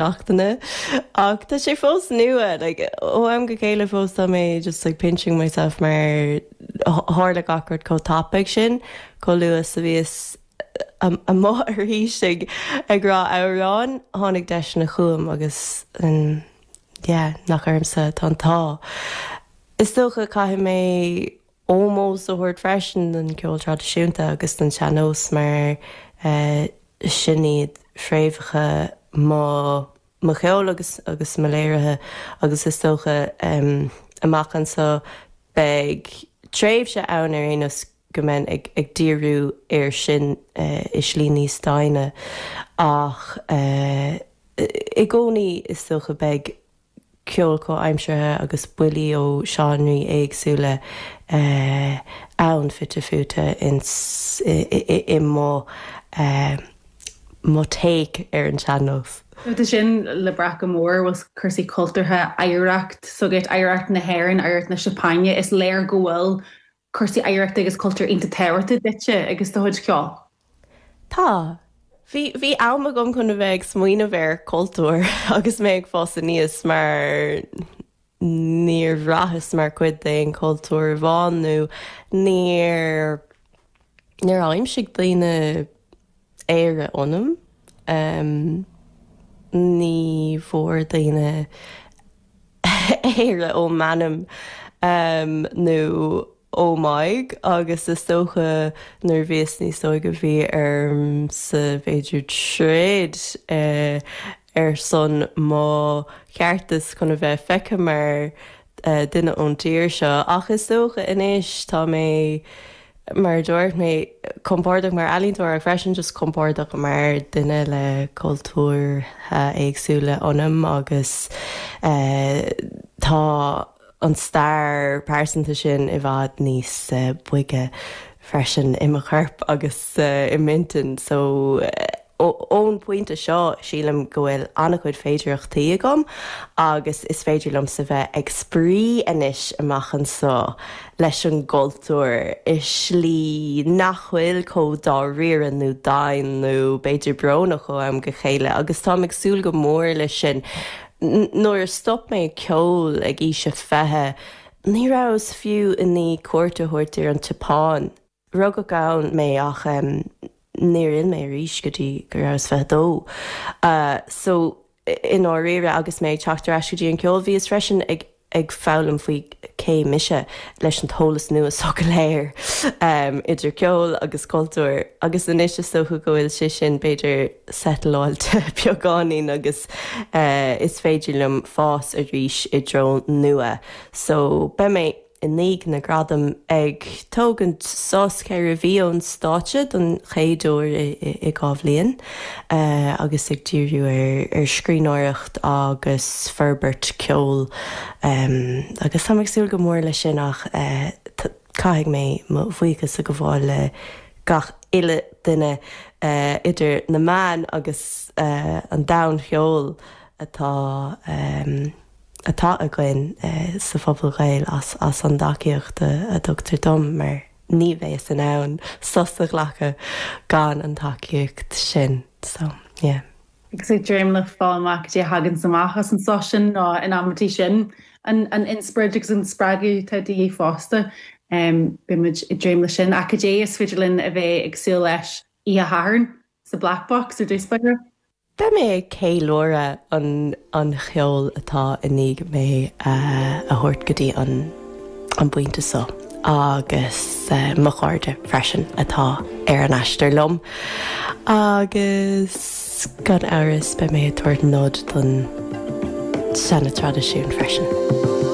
seachtaine. Ach tá sé fós nua, like, ó am go céile fós tá mé just like pinching myself mar tharla gach rud chomh tapaidh sin, chomh luath is a bhíos amuigh arís ag ag rá amhráin, tháinig deiseanna chugam agus yeah, nach ormsa atá an t-ádh. Is dócha caithfidh mé. ómós a thabhairt freisin don cheol traidisiúnta agus don sean-nós mar sin iad fréamhacha mo cheoil agus agus mo léirithe agus is dócha amach anso beidh tréimhse ann ar aon nós go mbeinn ag díriú air sin i slí níos doimhne ach i gcónaí is dócha beidh ceol comhaimseartha agus buillí ó seánraí éagsúla ann fite fuaite i mo take ar an tsean-nós. Tá sin le brath go mór a bhfuil cúrsaí cultúrtha, oidhreacht, s'agat, oidhreacht na hÉireann, oidhreacht na Seapáine, is léir go bhfuil cúrsaí oidhreachta agus cultúir iontach tábhachtach duitse agus do chuid ceoil? Tá. Bhí, bhí am agam chun a bheith ag smaoineamh ar cultúr agus mé ag fás aníos mar níor bhraitheas mar chuid d'aon chultúr amháin nó níor, níor aimsigh daoine Éire ionam. Ní bhfuair daoine Éire ó m'ainm nó ó m'aghaidh agus is dócha nuair a bhíos níos óige bhí ormsa b'fhéidir troid ar son mo cheartais chun a bheith feicthe mar dhuine ón dtír seo, ach is dócha anois tá mé, mar a dúirt mé, compordach mar ealaíontóir ach freisin just compordach mar dhuine le cultúrtha éagsúla ionam agus tá. an stair pearsanta sin i bhfad níos boige freisin i mo chorp agus i m'intinn. So, ón bpointe seo, sílim go bhfuil an-chuid féidearthachtaí agam agus is féidir liomsa bheith ag spraoi anois amach anso leis an gcultúr i slí nach bhfuil comh dáiríre nó domhain nó b'fhéidir brónach ó am go céile agus táim ag súil go mór leis sin. Nuair a stop mé ag ceol ag aois a fiche, ní rabhas fiú i ndiaidh cuairt a thabhairt ar an tSeapáin. Rugadh ann mé ach níor fhill mé arís go dtí go rabhas fiche dó. Só, i ndáiríre, agus mé ag teacht ar ais go dtí an ceol, bhíos freisin ag. ag foghlaim faoi cé mise leis an t-eolas nua so go léir, idir ceol agus cultúr, agus anois is dócha go bhfuil sé sin, b'fhéidir, settle-áilte beagáinín agus is féidir liom fás arís i dtreo nua. So, beidh mé, i ndiaidh na ngradam, ag tógaint sos ceithre mhí ón stáitse don chéad uair i dhá bhliain. agus ag díriú ar scríbhneoireacht agus forbairt ceoil agus táim ag súil go mór leis sin ach caithfidh mé mo bhuíochas a gabháil le gach uile duine idir na meáin agus an domhan cheoil atá atá againn sa phobal Gaeil as an dtacaíocht a dtugtar dom mar ní bheinnse in ann sos a ghlacadh gan an tacaíocht sin so yeah. Agus ag dréim le fáil amach cad é a thaganns amach as an sos sin nó in amaintí sin an inspioraid agus an spreagadh atá de dhíth fosta. Beidh muid ag dréim leis sin. Ach cad é is féidir linn a bheith ag súil leis oíche Shathairn sa Black Box ar dtús b'fhéidir? Beidh mé ag ceiliúradh an an cheoil atá i ndiaidh mé a thabhairt go dtí an an bpointe so agus mo chairde freisin atá ar an aistear liom agus gan amhras beidh mé ag tabhairt nod don seana traidisiún freisin.